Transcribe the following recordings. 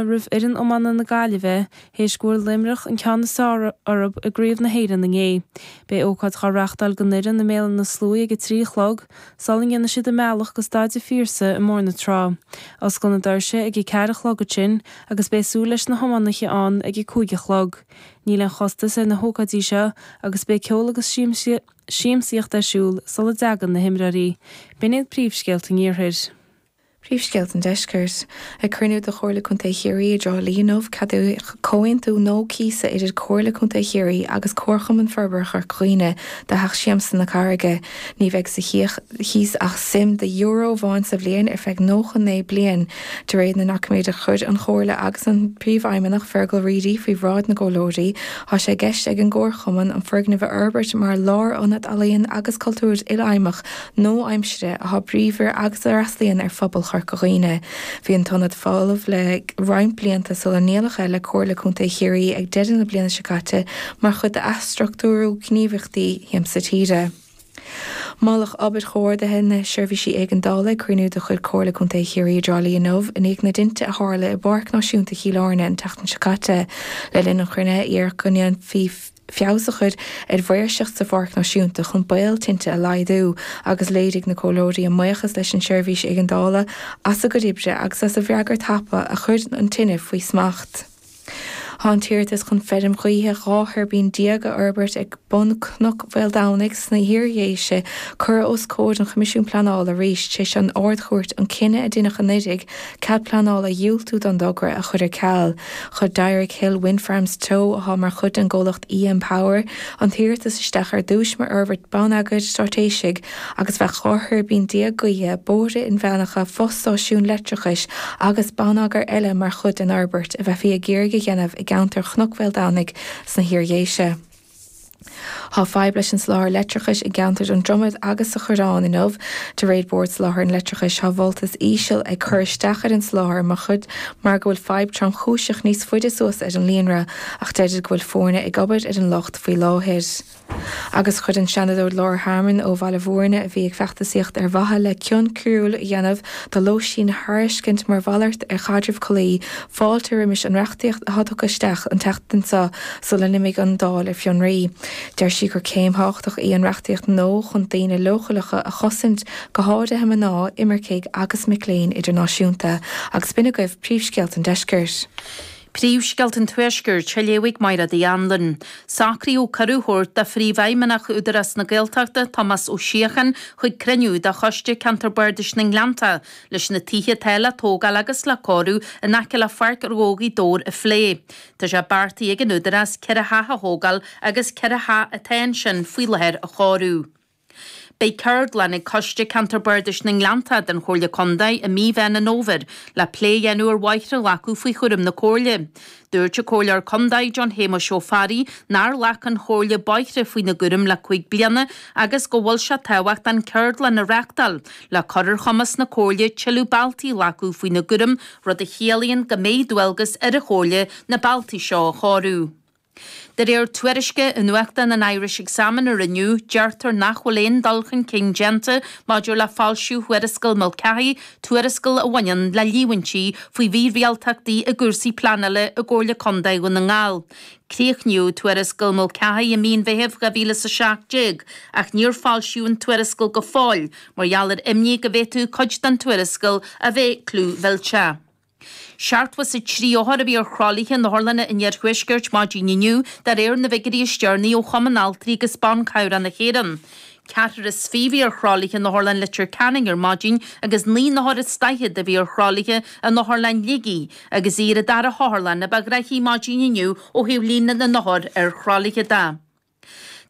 roimh fhoireann iomána na Gaillimhe théis go bhfuair Luimneach an ceann is fearr orthub i gCraobh na hÉireann inné. Beidh ócáid dhá reachtáil don fhoireann i mBéal Átha na Sluaighe ag a trí a chlog, sula ndéanann siad a mbealach go Staid an Phiarsaigh i mBóthar na Trá. Osclóidh na doirse ag a ceathair a chlog ansin agus beidh súil leis na hiománaithe ann ag a cúig a chlog. Níl aon chostas ar na hócáidí seo agus beidh ceol agus siamsaíocht ar siúl sula dteagann na himreoirí. B'in iad príomhscéalta an iarthair. Príomhscéalta an Deiscirt. Ag cruinniú de Chomhairle Contae Chiarraí i dTrá Lí inniu, ceadaíodh comhaontú nua cíosa idir Comhairle Contae Chiarraí agus Comharchumann Forbartha Chorca Dhuibhne do Theach Siamsa na Carraige. Ní bheidh sa chíos ach suim de euro amháin sa bhliain ar feadh 99 bliain, de réir na ndoiciméad a chuir an Chomhairle agus an Príomhfheidhmeannach Fearghal Reidy faoi bhráid na gcomhairleoirí. Tá sé i gceist ag an gComharchumann an foirgneamh a fhorbairt mar lárionad ealaíon agus cultúir ilfheidhmeach, nua-aimsire atá bríomhar agus a fhreastlaíonn ar phobal Chorca Dhuibhne. Bhí an t-ionad folamh le roinnt blianta sula ndíoladh é le Comhairle Contae Chiarraí ag deireadh na bliana seo caite mar chuid d'athstruchtúrú gníomhaíochtaí Shiamsa Tíre. Moladh obair chomhordaithe na Seirbhísí Éigeandála ag cruinniú de chuid Comhairle Contae Chiarraí i dTrá Lí inniu i ndiaidh na dtinte a tharla i bPáirc Náisiúnta Chill Airne an tseachtain seo caite. Le linn an chruinnithe iarradh go ndéanfaí feabhas a chur ar mhaoirseacht sa Pháirc Náisiúnta chun baol tinte a laghdú agus léirigh na Comhairleoirí a mbuíochas leis an tSeirbhís Éigeandála as a gcuid oibre agus as a bhfreagairt thapa a chuir an tine faoi smacht. Tá an t-iarratas chun feirm ghaoithe 12 thuirbín a fhorbairt ag bun Chnoc Mhaoldomhnaigh sna hIardhéise curtha os comhair an Choimisiúin Pleanála arís tar éis don Ard-Chúirt an cinneadh a dineadh anuraidh Cead pleanála a dhiúltú don dtogra a chur ar ceal. Chuir Dyrick Hill Wind Farms Teo, atá mar chuid den gcomhlacht EM Power, an t-iarratas isteach ar dtúis mar fhorbairt bonneagair straitéisigh agus bheadh 12 thuirbín gaoithe, bóithre inmheánacha, fo-stáisiún leictreachais agus bonneagar eile mar chuid den fhorbairt a bheifí ag iarraidh a dhéanamh i gceantar Chnoc Mhaoldomhnaigh sna hIardhéise. Tá fadhb leis an soláthar leictreachais i gceantar an Dromaid agus sa Choireán inniu. De réir Bord Soláthair an Leictreachais, tá voltas íseal ag cur isteach ar an soláthar mar go bhfuil fadhb tromchúiseach níos faide suas ar an líonra ach deirtear go bhfuil foirne ag obair ar an locht faoi láthair. Agus chuir an Seanadóir Laura Harmon ó Bhaile Bhúirne, a bhí ag feachtasaíocht ar mhaithe le cion coiriúil a dhéanamh do lóistín a thairiscint mar mhalairt ar chaidreamh collaí, Fáilte roimis an reachtaíocht atá tugtha isteach an tseachtain seo sula n-imigh an Dáil ar fionraí. Deir sí gur céim thábhachtach í an reachtaíocht nua chun daoine leochaileacha a chosaint, go háirithe mná, imircigh agus mic léinn idirnáisiúnta. Agus b'in agaibh príomhscéalta an deiscirt. Príomhscéalta an Tuaiscirt, á léamh ag Máire Uí Anluain. Socraíodh cuireadh a thabhairt do Phríomhfheidhmeannach Údarás na Gaeltachta, Tomás Ó Síocháin, chuig cruinniú de Choiste Ceantar Bardais na nGleannta leis na tithe atá le tógáil agus le cóiriú in aice le Páirc Ghaoth Dobhair a phlé. Tá sé beartaithe ag an Údarás ceithre theach a thógáil agus ceithre theach atá ansin faoi láthair a chóiriú. Beidh ceardlann ag Coiste Ceantair Bardais na nGleannta den Chomhairle Contae i mí Mheán an Fhómhair le plé a dhéanamh ar bhóithre a ghlacadh faoi chúram na Comhairle. Dúirt an Comhairleoir Contae John Shéamuis Ó Fearraigh nár ghlac an Chomhairle bóithre faoina gcúram le cúig bliana agus go bhfuil sé tábhachtach an ceardlann a reachtáil le cur ar chumas na Comhairle tuilleadh bealtaí a ghlacadh faoina gcúram rud a chiallaíonn go mbeidh dualgas ar an Chomhairle na bealtaí seo a chóiriú. De réir tuairisce i nuachtán an Irish Examiner inniu, deirtear nach bhfuil aon dul chun cinn déanta maidir le foilsiú Thuarascail Mulcahy Tuarascail a bhaineann le líomhaintí faoi mhírialtachtaí i gcúrsaí pleanála i gComhairle Contae Dhún na nGall. Críochnaíodh Tuarascail Mulcahy i mí an Mheithimh 2017 ach níor foilsíodh an tuarascail go fóill mar gheall ar imní go bhféadfadh cuid den tuarascail a bheith clúmhillteach. Seachtó is a trí othar a bhí ar thralaithe in otharlanna an iarthuaiscirt maidin inniu, de réir na bhfigiuirí is deireanaí ó Chumann Altraí agus Ban Cabhrach na hÉireann. Ceathrar is fiche a bhí ar thralaithe in otharlann Leitir Ceanainn ar maidin agus naoi n-othar is daichead a bhí ar thralaithe in otharlann Shligigh agus í ar an dara hotharlann ba ghnoithí maidin inniu ó thaobh líon na n-othar ar thralaithe de.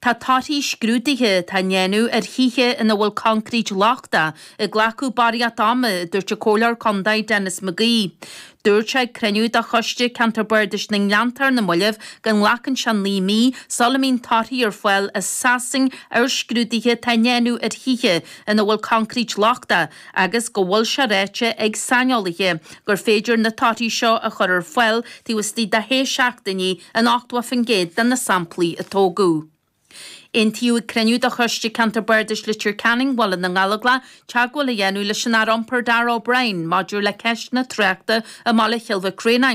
Tá torthaí scrúduithe atá a ndéanamh ar thithe ina bhfuil concrete lochta ag glacadh barraíocht ama, a dúirt an Comhairleoir Contae Denis McGee. Dúirt sé ag cruinniú de Choiste Ceantair Bardais na nGleanntach ar na mallaibh go nglacann sé naoi mí sula mbíonn torthaí ar fáil as Sasain ar scrúduithe atá á ndéanamh ar thithe ina bhfuil coincréit lochtach agus go bhfuil sé ráite ag saineolaithe gur féidir na torthaí seo a chur ar fáil taobh istigh de shé seachtainí in 80% de na samplaí a tógadh. Aontaíodh ag cruinniú de Choiste Ceantair Bardais Leitir Ceanainn Bhaile na nGallóglach teagmháil a dhéanamh leis an Aire Iompair Darragh O'Brien maidir le ceist na tráchta i mBaile Chill Mhic Réanáin.